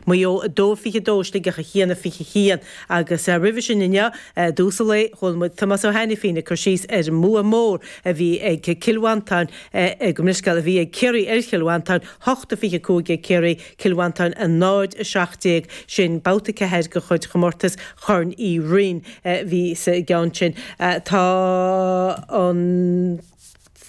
Maigh Eo 2, 22 Sligeach 1, 21 agus roimhe sin inniu i dtús an lae chuala muid Tomás Ó hAinifín ag cur síos ar an mbua mór a bhí ag Cill Mhantáin gabh mo leithscéal a bhí ag Ciarraí ar Chill Mhantáin, 8 a 25 ag Ciarraí, Cill Mhantáin 0 a 17. Sin babhta 4 de chuid chomortas Chorn Uí Fhloinn a bhí sa gceann sin. Tá an.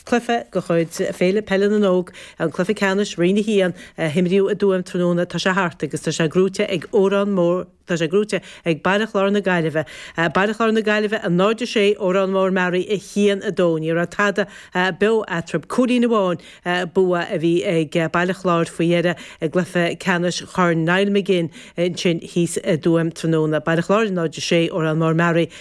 Cluife de chuid Féile Peile na nÓg é an cluife ceannais Roinn 1 a himríodh i dTuaim tráthnóna. Tá sé thart agus tá sé gnóite ag Órán Mór Tá sé gnóite ag Baile Chláir na Gaillimhe. Baile Chláir na Gaillimhe 0-6 Órán Mór Mearaí 1-2 Ní raibh tada beo eatraib. Cúilín amháin bua a bhí ag Baile Chláir faoi dheireadh i gcluife ceannais Chorn Niall McGinn ansin thíos i dTuaim tráthnóna. Baile Chláir 0-6 Órán Mór Mearaí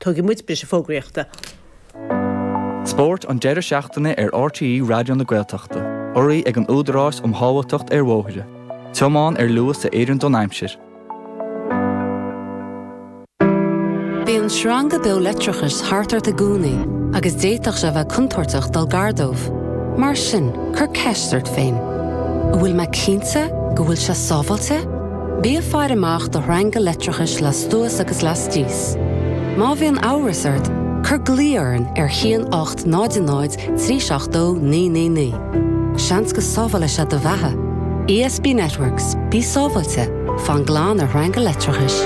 Tógfaidh muid briseadh fógraíochta. Spórt an deireadh seachtaine ar RTÉ Raidió na Gaeltachta, urraithe ag an Údarás um Shábháilteacht ar Bhóithre. Tiomáin ar luas a oireann don aimsir. Bíonn sreanga beo leictreachais thart ort i gcónaí agus d'fhéadfadh sé a bheith contúirteach dul gar dóibh. Mar sin, cuir ceist ort féin, An bhfuil mé cinnte go bhfuil sé sábháilte? Bí ag faire amach do shreanga leictreachais lastuas agus lastíos. Má bhíonn amhras ort, cuir glao orainn ar 1800 370 999. Seans go sábhálfaidh sé do bheatha. ESB Networks, bí sábháilte, fan glan ar shreanga leictreachais.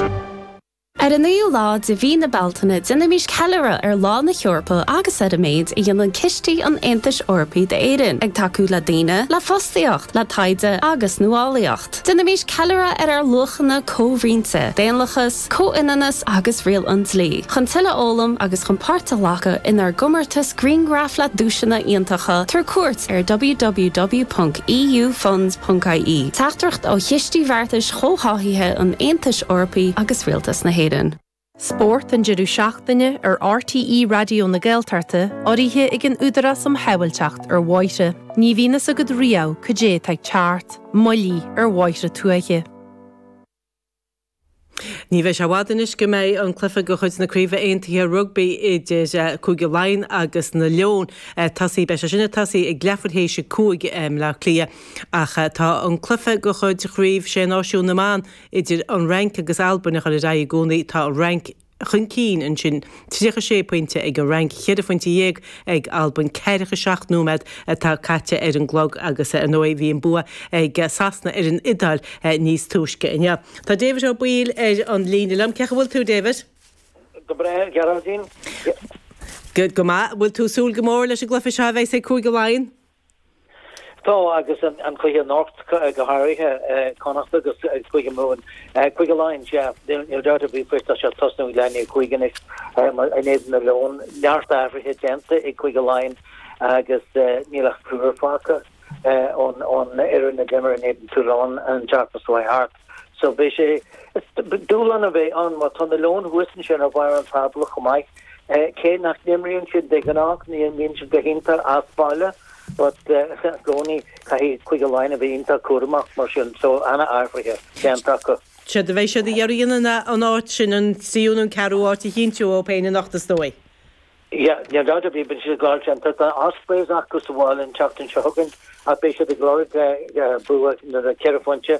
Ar an 9ú lá de mhí na Bealtaine déanaimís ceiliúradh ar Lá na hEorpa agus ar an méid a dhéanann cistí an Aontais Eorpaigh d'Éirinn, ag tacú le daoine, le fostaíocht, le taighde agus nuálaíocht. Déanaimís ceiliúradh ar ár luachanna comhroinnte, daonlachas, comhionannas agus riail an dlí, chun tuilleadh a fhoghlaim agus chun páirt a ghlacadh inár gcomórtas Grianghraif le duaiseanna iontacha, tabhair cuairt ar www.eufunds.ie, teachtaireacht ó Chistí Bheartais Chomhtháthaithe an Aontais Eorpaigh agus Rialtas na hÉireann. Spórt an deireadh seachtaine ar RTÉ Raidió na Gaeltachta, urraithe ag an Údarás um Shábháilteacht ar Bhóithre. Ní bhíonn fhios agat riamh cad é atá ag teacht. Moilligh ar bhóithre tuaithe. Ní bheidh sé i bhfad anois go mbeidh an cluiche de chuid na Craoibhe Aontaithe Rugbaí idir Cúige Laighean agus na Leoin tosaithe. Beidh sé sin ag tosaí ag leathuair théis a cúig i mBleá Cliath ach tá an cluiche de chuid Chraobh Sé Náisiún na mBan idir an Fhrainc agus Albain ag goil ar aghaidh i gcónaí. Tá an Fhrainc i chun cinn, ansin 36 pointe ag an Fhrainc, cheithre phointe dhéag ag Albain. Ceathracha seacht nóiméad atá caite ar an gclog agus ar ndóigh bhí an bua ag Sasana ar an Iodáil níos túisce inniu. Tá David de Bhál ar an líne liom. Cé chaoi a bhfuil tú, David? Go breá, a Ghearóidín. Go maith. Bhfuil tú ag súil go mór leis an gcluiche seo a bheas ag Cúige Laighean? Tá, agus an cluiche anocht go háirithe, Connacht agus Cúige Mumhan, Cúige Laighean, sea, níl dabht ar bith faoi, tá sé ag tosnú ag leath i ndiaidh a cúig anois in éadan na Leon, neart athruithe déanta ag Cúige Laighean agus níl ach triúr fágtha ón fhoireann a d'imir in éadan Toulon an tseachtain seo thart. So beidh sé, dúshlán a bheadh ann mar tá na Leoin thuas ansin ar bharr an tábla chomh maith, cé nach n-imríonn siad de ghnáth, ní imríonn siad go hiontach as baile but i gcónaí caithfidh Cúige Laighean a bheith iontach cúramach mar sin, so an-athruithe déanta acu. Séard a bheidh siad ag iarraidh an áit sin, an tríú nó an ceathrú áit a chinntiú ó thaobh na n-ocht is dóigh. Níl dabht ar bith beidh siad ag gabháil sin. Tá Ospreys acu sa bhaile an tseachtain seo chugainn ach beidh siad ag lorg bua nó ceithre phointe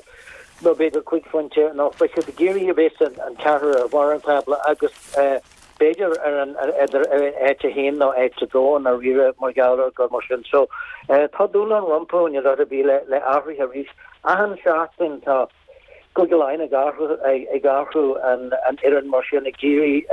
nó b'fhéidir cúig phointe nó beidh siad ag iarraidh a bheith san an ceathrar ar bharr an tábla agus b'fhéidir ar an idir áit a haon nó áit a dó i ndáiríre mar gheall ar gur mar sin so tá dúshlán rompu níl dabht ar bith le le athruithe arís achan seachtain tá Cúige Laighean ag athrú ag athrú an an fhoireann mar sin ag iarraidh